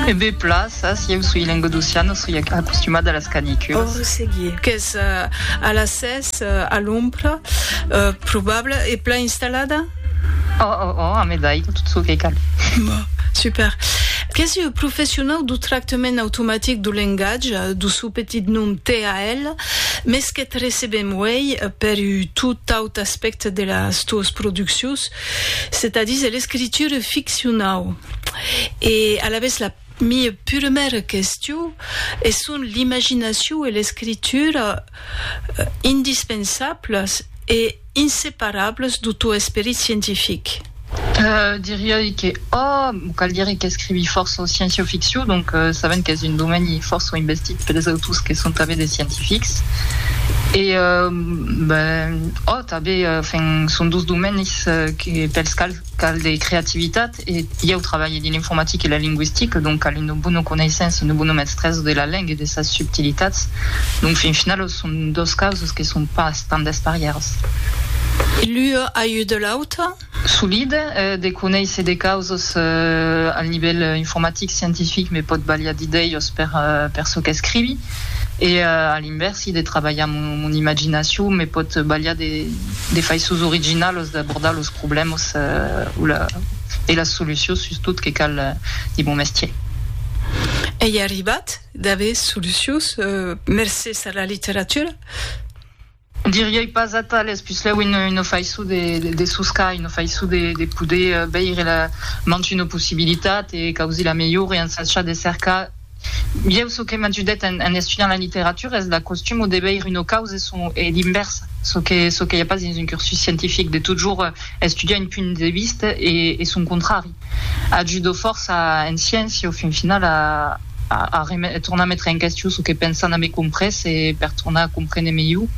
E be plaça, si eu soi lengodocian, o soi acostumat a las caniculas. Qu'es a las sètz a l'ombra, probable, e plan installada? Oh, oh, oh, ame d'aiga, tot çò que cal. Bon, super. Qu'es ua professionau do tractament automatic do lengatge, do sò petit nom TAL, mès qu'eth recebem uei per ua tot aut aspècte de las tuas produccions, Setadís, l'escritura ficcionau e alavetz la mia puremèra question e son l'imaginacion e l'escritura indispensablas e inseparables do tò esperit scientific? Diria-i que. Ohh! Cal dire qu'escrivi fòrça en sciéncia-ficcion, donc sabent qu'es un domeni fòrça investit pels autors que son tanben de scientifics. E ben, ohh, tanben, enfin, son dos domenis que pels quals cal de creativitat e ieu trabalhe dins l'informatica e la lingüistica, donc cal una bona coneissença e una bona mestresa de la lenga e de sas subtilitats. Donc, fin final, son dos causas que son pas tant desparièras. E l'ua a ajudat l'auta? Solid de conéisser de causas al nivèl informatic, scientific, me pòt balhar d'idèias per çò qu'escrivi e a l'invèrsi de trabalhar mon imaginacion me pòt balhar de faiçons originalas d'abordar los problèmas e las solucions sustot que cal dins mon mestièr. Ei arribat d'aver solucions mercés a la literatura? Diriei pas atales, puslèu una faiçon de soscar, una faiçon de poder veire la mantun o possibilitat e causir la melhor e ensachar de cercar. Ieu çò que m'ajudèt en estudiant la literatura es la costum o de veire una causa son e l'invèrsa, çò que çò que i a pas dins un cursus scientific, de totjorn estudiar un punt de vista e son contrari. Ajudo fòrça en sciéncia au fin final a a tornar metre en question çò que pensan a me comprés e per tornar a comprene melhor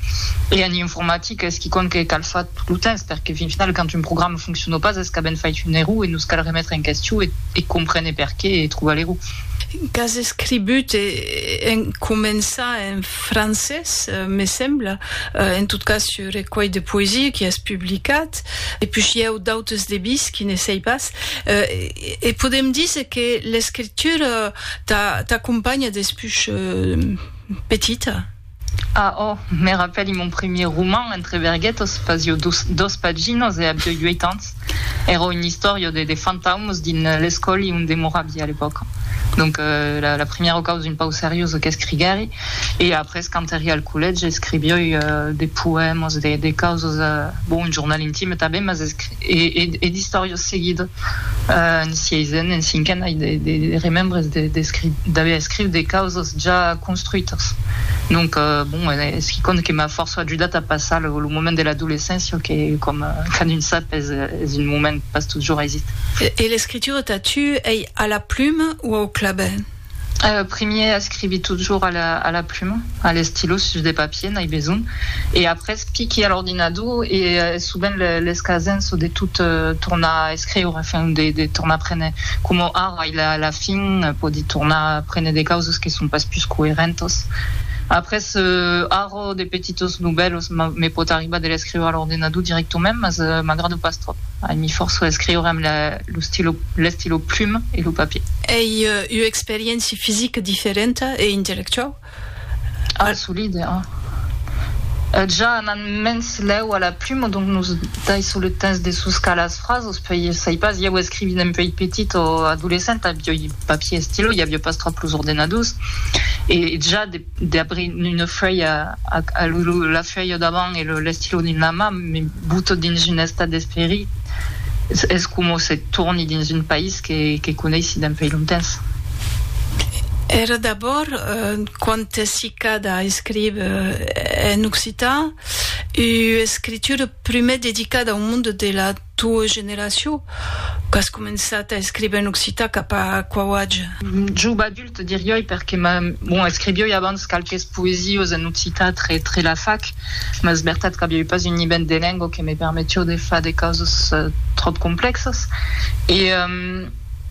e en informatica es quicòm que cal far tot lo temps perque fin final quand un programa foncciona pas es qu'a ben fait un error e nos cal remetre en question e comprene perqué e trobar l'error. Qu'as escribut e en començar en francés me sembla, en tot cas ce recuelh de poesia qui es publicat. Depuish i au d'autes debís qui ne sei pas. E podem díser que l'escritura t'acompanha despuish petita? A ò, me rapèli mon primièr roman, Entre verguetos, fasió dos paginas e avió ueit ans. Èra una istòria de fantaumes dins l'escòli onde moravi a l'epòca. Donc la primièra causa un pauc seriosa qu'escriguèri. E après, quand èri al collège, escrivioi de poèmas, de causas, bon, un jornal intime tanben, mas e d'istòrias seguida. En sieisenn, en cinquen, ai de remembres d'aver escrich de causas ja construitas. Donc, bon, es quicòm que m'a fòrça ajudat a passar lo moment de l'adolescéncia, que coma cadun sap es un moment pas totjorn aisit. E l'escritura tà tu, ei a la pluma o au clabèr? Euh, primièr escrivi totjorn a la, a la pluma, a l'estilo, sus de papier, n'ai besonh, e après piqui a l'ordinador, e es sovent le, l'escasenço de tot tornar escriure, enfin, de, de tornar prene, coma ara, i la, la fin, pòdi tornar prene de causas que son pas pus coerentas. Après, euh, ara, de petitos novèlos me, me pòt arribar de l'escriure a l'ordinador directament, mas m'agrada pas tròp, ai, mi fòrço a escriure amb la, lo stilo, l'estilo pluma e lo papier. Ei ua experiéncia fisica diferenta e intellectuau? Ah, solide, a. Ja anant mens lèu a la pluma, donc nos daissons le temps de soscar las frasos, puèi, sai pas, ieu escrivint un puèi petit o adolescent, avioi papier e stilo, i aviá pas tròp los ordenadors, e ja de. Debri una fuèlha a lo la fuèlha davant e l'estilò dins la man, me buto dins un estat d'esperit, es coma se torni dins un país que coneissi dempèi longtemps. Era d'abòrd, quand t'es ficada a escriver en occitan, ua escritura prumèr dedicada au monde de la. Tua generacion? Qu'as començat a escriver en occitan cap a quau atge? Jove adult, dirioi, perque bon, escrivioi abans qualques poesiós en occitan tre la fac, mas es vertat qu'avioi pas un nivèl de lengua que me permetió de far de causas tròp complexas. E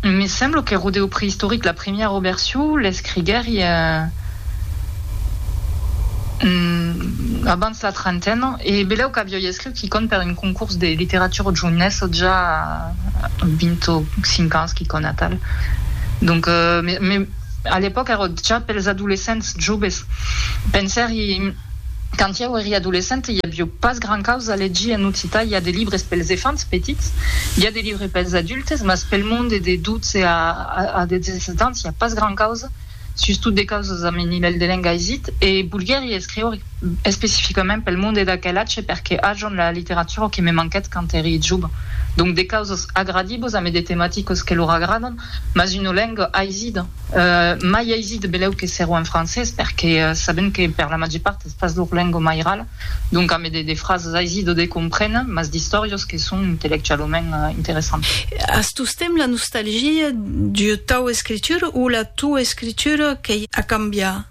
me semblo que Rodeo Prehistoric, la primièra version, l'escriguèri abans la trentena, e belèu qu'avioi escrich. qui compte per un concurs de littérature jounesse ò ja a 20 ò 5 ans qui compte atal donc me a l'epòca èrò ja pels adolescents joves pensèri quand ieu eri adolescente i avió pas grand causa a legir en occitan i a de libres pels efants petits i a de libres pels adultes mas pel monde de 12 a 17 ans i a pas grand causa sustot de causas amb un nivèl de lenga aisit, e volguèri escriure especificament pel monde d'aquel atge perque ajon la literatura que me manquèt quand èri joven. Donc de causas agradibos ame de tematicos que lor agradon, mas una lenga aisida. Mai aisit belèu que sèro en francés, perque sabent que per la màger part es pas lor lenga mairala. Donc ame de frasas aisi do de compréner, mas d'istòrios que son intellectualament interessants. As tostemps la nostalgia d'ua tau escritura o la tua escritura qu'ei a cambiar?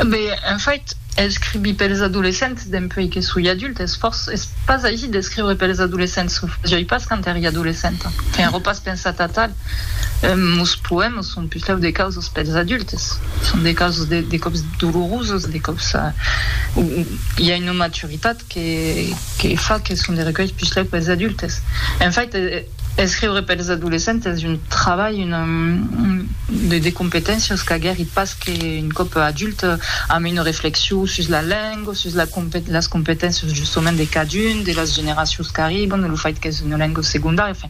Be, en fait, escrivi pels adolescents dempuèi que soi adult es fòrça, es pas aisi d'escriure pels adolescents, o fasioi pas quand èri adolescenta, qu'enrò pas pensat a tal. Mos poèmas son pichau de causas pels adultes, son de causas de còps dolorosas, de còps o i a una maturitat que fa que son de recuèlhs pichau pels adultes. En fait, escriure pels adolescents es un trabalh, una de competéncias qu'aguèri pas que un còp adulte, amb una reflexion sus la lenga, sus las competéncias justament de cadun de las generacions qu'arriban, lo fait qu'es una lenga segondària, enfin.